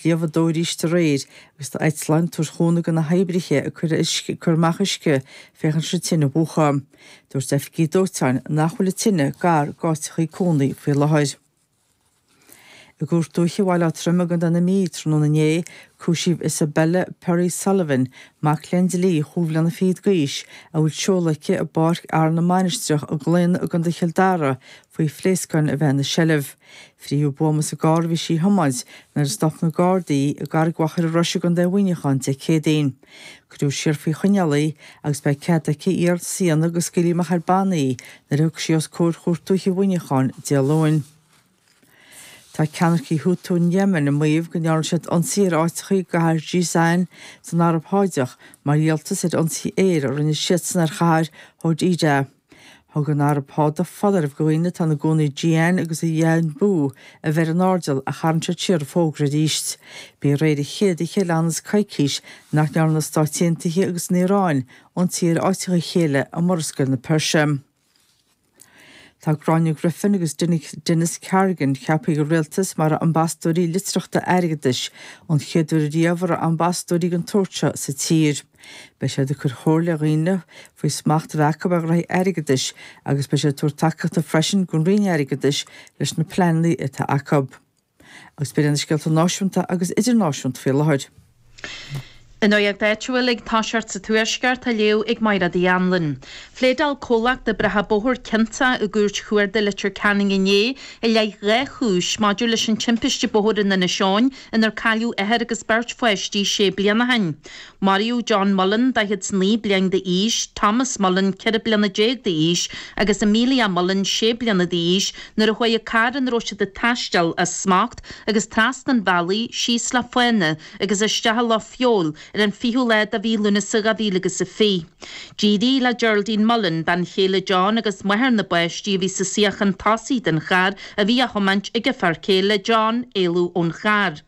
Gheofar dó aríst aréir, agus tá eitleáin ag tabhairt cúnamh do na hoibrithe ag cur uisce, ag cur amach uisce, féachaint le tine a mhúchadh. Dúirt oifigigh dóiteáin nach bhfuil an tine gar d'áiteachaí cónaí faoi láthair. I gCúirt Dúiche Bhaile Átha Troim i gContae na Mí tráthnóna inné, cúisíodh Isabella Perry Sullivan, mac léinn dlí chúig bhliana fichead d'aois, a bhfuil seoladh aici i bPáirc Fhearann na Mainistreach i gClaonadh i gContae Chill Dara, faoi phléascáin a bheith ina seilbh. Frítheadh buama sa gcarr a bhí sí a thiomáint nuair a stop na Gardaí i gCarraig Mhachaire Rois i gContae Mhuineacháin Dé Céadaoin. Cuireadh siar faoi choinneáil í agus beidh cead aici iarratas a dhéanamh go scaoilfí amach ar bannaí í nuair a thiocfas sí os comhair Chúirt Dúiche Mhuineacháin Dé Luain. Tá ceannaircigh Houthi in Yemen ag maíomh go ndearna siad ionsaí ar áiteachaí i gcathair Jizan san Araib Sháideach mar dhíoltas ar ionsaí aeir a rinne siadsan ar chathair Hodeida. Thug an Araib Sháideach foláireamh do dhaoine atá ina gcónaí i Jizan agus i Yanbu a bheith ar an airdeall ach tharraing siad siar an fógra arís. Ba í aréir an chéad oíche le ionann is coicís nach ndearna na Stáit Aontaithe agus an Iaráin ionsaí ar áiteacha a chéile i Murascaill na Peirse. Tá Gráinne Griffin agus Denis Carrigan ceapaithe ag an Rialtas mar ambasadóirí litearthachta airgeadais, an chéad uair riamh a raibh ambasadóirí den tsórt seo sa tír. Beidh siad ag cur comhairle ar dhaoine faoi smacht a bheith acu ar ghnoithí airgeadais agus beidh siad ag tabhairt tacaíochta freisin don Roinn Airgeadais leis na pleananna atá acu. Agus b'iad sin na scéalta náisiúnta agus idirnáisiúnta faoi láthair. An nuaíocht áitiúil ag toiseacht sa Tuaisceart á léamh ag Máire D. Anluain. Phléadáil comhlacht oibreacha bóthair ciontach i gCúirt Chuarda Leitir Ceanainn inné i leith dhá chúis maidir leis an timpiste bóthair in Inis Eoghain inar cailleadh athair agus beirt pháistí sé bliana ó shin. Maraíodh John Mullan, 49 bliain d'aois, Thomas Mullan, 14 bliana d'aois, agus Amelia Mullan, 6 bliana d'aois, nuair a chuaigh an carr ina raibh siad ag taisteal as smacht agus trasna an bhealaigh síos le fána agus isteach i Loch Feabhail ar an 20ú lá de mhí Lúnasa 2020. D'éirigh le Geraldine Mullan, bean chéile John agus máthair na bpáistí a bhí sa suíochán tosaigh den charr a bhí á thiomáint ag a fear céile, John, éalú ón charr.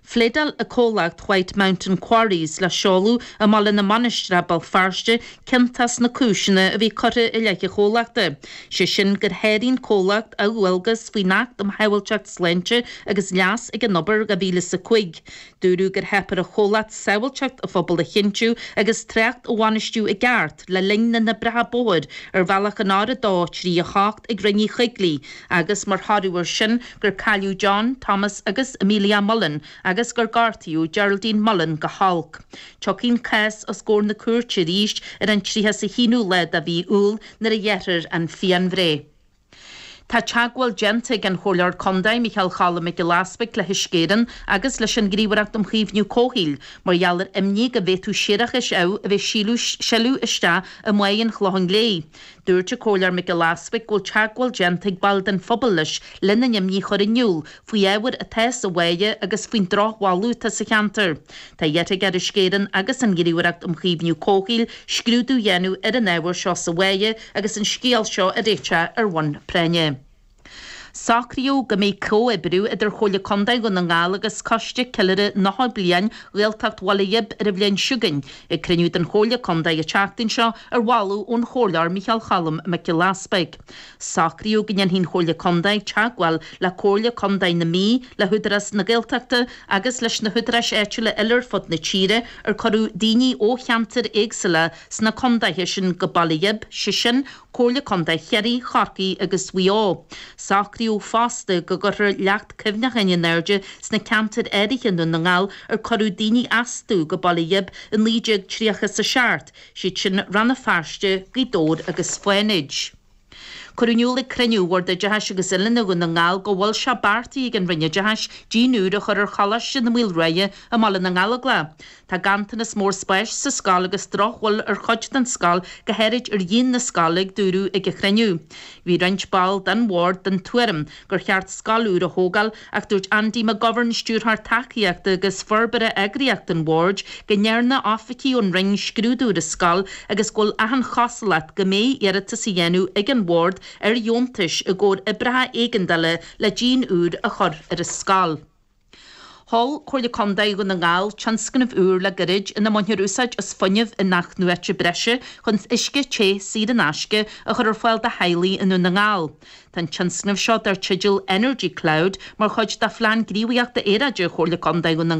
Phléadáil an comhlacht White Mountain Quarries le seoladh i mBaile na Mainistreach, Béal Feirste, ciontach sna cúiseanna a bhí curtha i leith an chomhlachta, sé sin gur sháraigh an comhlacht a dhualgas faoin Acht um Shábháilteacht, Sláinte agus Leas ag an Obair 2005. Dúradh gur theip ar an chomhlacht sábháilteacht an phobail a chinntiú agus trácht a bhainistiú i gceart le linn na n-oibreacha bóthair ar bhealach an R238 ag Rinn Uí Choigligh agus mar thoradh ar sin gur cailleadh John, Thomas agus Amelia Mullan agus gur gortaíodh Geraldine Mullan go holc. Tiocfaidh an cás os comhair na cúirte arís ar an 31ú lá de mhí Iúil nuair a ghearrfar an phianbhreith. Tá teagmháil déanta ag an Chomhairleoir Contae, Micheál Choilm Mac Giolla Easbuig, le hUisce Éireann agus leis an nGníomhaireacht um Chaomhnú Comhshaoil mar gheall ar imní go bhféadfadh séarachas amh a bheith ag sileadh isteach i mBáighe an Chlocháin Léith. Dúirt an Comhairleoir Mac Giolla Easbuig go bhfuil teagmháil déanta ag baill den phobal leis lena n-imní a chur in iúl faoi ábhar atá sa bháighe agus faoin drochbholadh atá sa cheantar. Tá iarrtha aige ar Uisce Éireann agus an Ghníomhaireacht um Chaomhnú Comhshaoil scrúdú a dhéanamh ar an ábhar seo sa bháighe agus an scéal seo a réiteach ar bhonn práinne. Socraíodh go mbeidh comhoibriú idir Chomhairle Contae Dhún na nGall agus Coiste Ceiliúrtha Nócha Bliain Ghaeltacht Bhaile Ghib ar an bhliain seo chugainn ag cruinniú den Chomhairle Contae an tseachtain seo ar mholadh ón Chomhairleoir Micheál Choilm Mac Giolla Easbuig. Socraíodh go ndéanfadh an Chomhairle Contae teagmháil le Comhairle Contae na Mí, le hÚdarás na Gaeltachta agus leis na húdaráis áitiúla eile ar fud na tíre ar cuireadh daoine ó cheantair éagsúla sna contaetha sin go Baile Ghib, sé sin, Comhairle Contae Chiarraí, Chorcaí agus Mhaigh Eo. Socraíodh fosta go gcuirfear leacht cuimhneacháin in airde sna ceantair áirithe i nDún na nGall ar cuireadh daoine astu go Baile Ghib i 1937, siad sin Rann na Feirste, Gaoth Dobhair agus Fánaid. Cuireadh in iúl ag cruinniú Bhord Oideachais agus Oiliúna Dhún na nGall go bhfuil sé beartaithe ag an Roinn Oideachais díon úr a chur ar Choláiste na Maoile Ruaidhe i mBaile na nGallóglach. Tá ganntanas mór spáis sa scoil agus drochbhail ar chuid den scoil go háirid ar dhíon na scoile a dúradh ag an chruinniú. Bhí roinnt ball den bhord den tuairim gur cheart scoil úr a thógáil ach dúirt Andy McGovern, Stiúrthóir Tacaíochta agus Forbartha Eagraíochta an Bhoird, go ndearna oifigigh ón Roinn scrúdú ar an scoil agus go bhfuil achan chosúlacht go mbeidh iarratas á dhéanamh ag an Bhord ar dheontais i gcomhair oibreacha éigeandála le díon úr a chur ar an scoil. Mhol Comhairle Contae Dhún na nGall tionscnamh úr le gairid ina mbaintear úsáid as fuinneamh in-athnuaite breise chun uisce te saor in aisce a chur ar fáil do theaghlaigh i nDún na nGall. Tá an tionscnamh seo, dar teideal Energy Cloud, mar chuid de Phlean Gníomhaíochta Aeráide Chomhairle Contae Dhún na